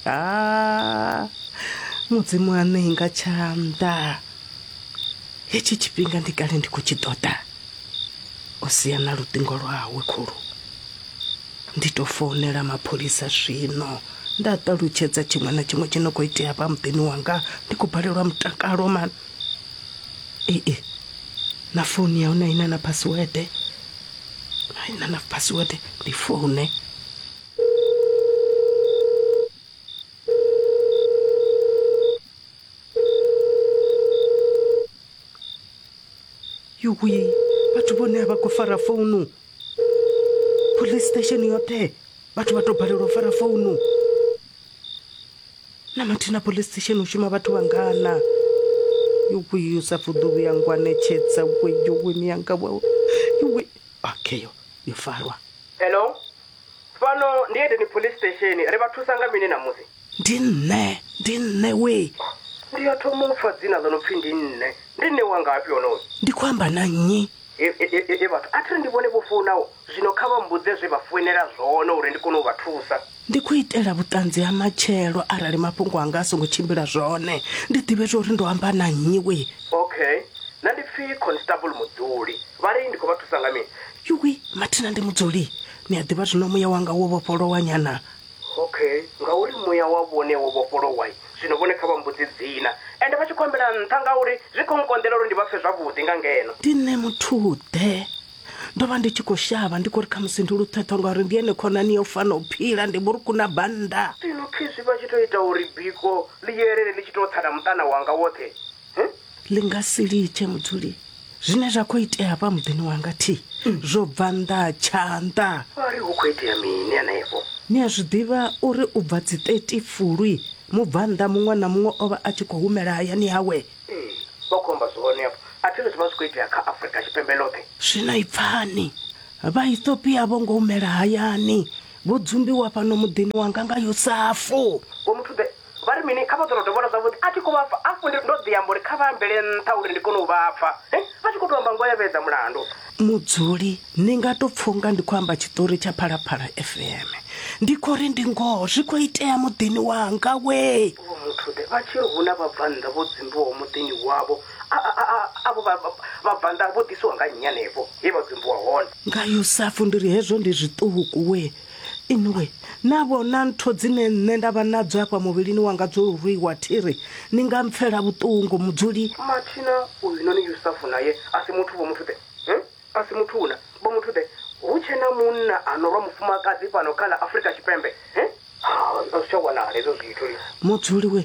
ha mudzimu a ṋei nga tshanḓa hetshi tshifhinga ndi kale ndi khou tshi ṱoḓa o sia na luṱingo lwawe khulu ndi tou founela mapholisa zwino nda ṱalutshedza tshiṅwe na tshiṅwe tshi no khou itea vha muḓini wanga ndi khou balelwa mutakalo mani ee na founu ya hone aina na password aina na password ndi foune yuwi vhathu vhone a vha khou fara founu police station yoṱhe vhathu vha to balelwa u fara founu na mathina police station u shuma vhathu vhangana yokuyu sa fuḓuvi ya ngwanetshedza weyoweni yanga wawe yowe okay yo yo farwa hello Fhano ndi Edeni Police Station. Ri vha thusa nga mini ṋamusi? Ndi nṋe. Ndi nṋe wee. Ndi ya thoma u pfa dzina ḽo no pfi ndi nṋe. Ndi nṋe wa ngafhi honoyo? Ndi khou amba na nnyi? Hee vhathu, a thi ri ndi vhone vho founaho. Zwino kha vha mmbudze zwe vha founela zwone uri ndi kone u vha thusa. Ndi khou itela vhuṱanzi ha matshelo arali mafhungo anga a songo tshimbila zwone, ndi ḓivhe zwa uri ndo amba na nnyi wee. Okay. Nṋe ndi pfi Constable Mudzuli. Vha ri ndi khou vha thusa nga mini? yuwi mathina ndi mudzuli ni a ḓivha zwino muya wanga wo vhofholowa nyana okay ngauri muya wa vhone wo vhofholowa zwino vhone kha vha mbudzi dzina ende vha tshi khou ambela nṱha ngauri zwi khou nkonḓela uri ndi vha pfe zwavhuḓi nga ngeno ndi nṋe muthuḓe ndo vha ndi tshi khou shavha ndi khou ri khamusi ndi luṱhethwa ngauri ndi ene khonani yo fana u phila ndi vhuruku na bannda zwino khezwi vha tshi tou ita uri biko ḽi yelele ḽi tshi tou tsana muṱana wanga woṱhe ḽi nga si litshe mudzuli zwine zwa khou itea hafha muḓini wanga thi zwo bva nnḓa tshanḓa wa ri hu khou itea mini henefho ni a zwi ḓivha uri u bva dzi 30 fulwi mubvannḓa muṅwe na muṅwe o vha a tshi khou humela hayani hawe ee vha khou amba zwone afho a thi ri zwi vha zwi khou itea kha afrika tshipembe ḽoṱhe zwino i pfani vhaethopia vho ngo humela hayani vho dzumbiwa fhano muḓini wanga nga yosafu vho muthu ḓe Vha ri mini? Kha vha ḓo tou dovholola zwavhuḓi. A thi khou vha pfa. Hafhu ndi, ndo ḓi amba uri kha vha ambele nṱha uri ndi kone u vha pfa. He, vha tshi khou tou amba ngoho ya vhedza mulandu. Mudzuli, Ni nga tou pfa u nga ndi khou amba tshiṱori tsha Phalaphala FM. Ndi khou ri ndi ngoho, zwi khou itea muḓini wanga wee! Vho Muthude, Vha tshi ri hu na vhabvannḓa vho dzumbiwaho muḓini wavho, a, a, a, avho vha, vha, vhabvannḓa vho ḓisiwa nga nnyi hanefho he vha dzumbiwa hone? Nga Yusafu, Ndi ri hezwo ndi zwiṱuku wee! Inwi na vhona ntho dzine nṋe nda vha nadzo afha muvhilini wanga dzo lurwiwa thiri, ni nga mpfela vhuṱungu, mudzuli. Mathina uynoni Yusafu nae a si muthu, Vho Muthu-ḓe, he? A si muthu-na, Vho Muthu-ḓe, hu tshe na munna a no lwa mufumakadzi fhano kha ḽa Afrika Tshipembe, he? Ha, a zwi tsha wanala hezwo zwithu. Mudzuli-we,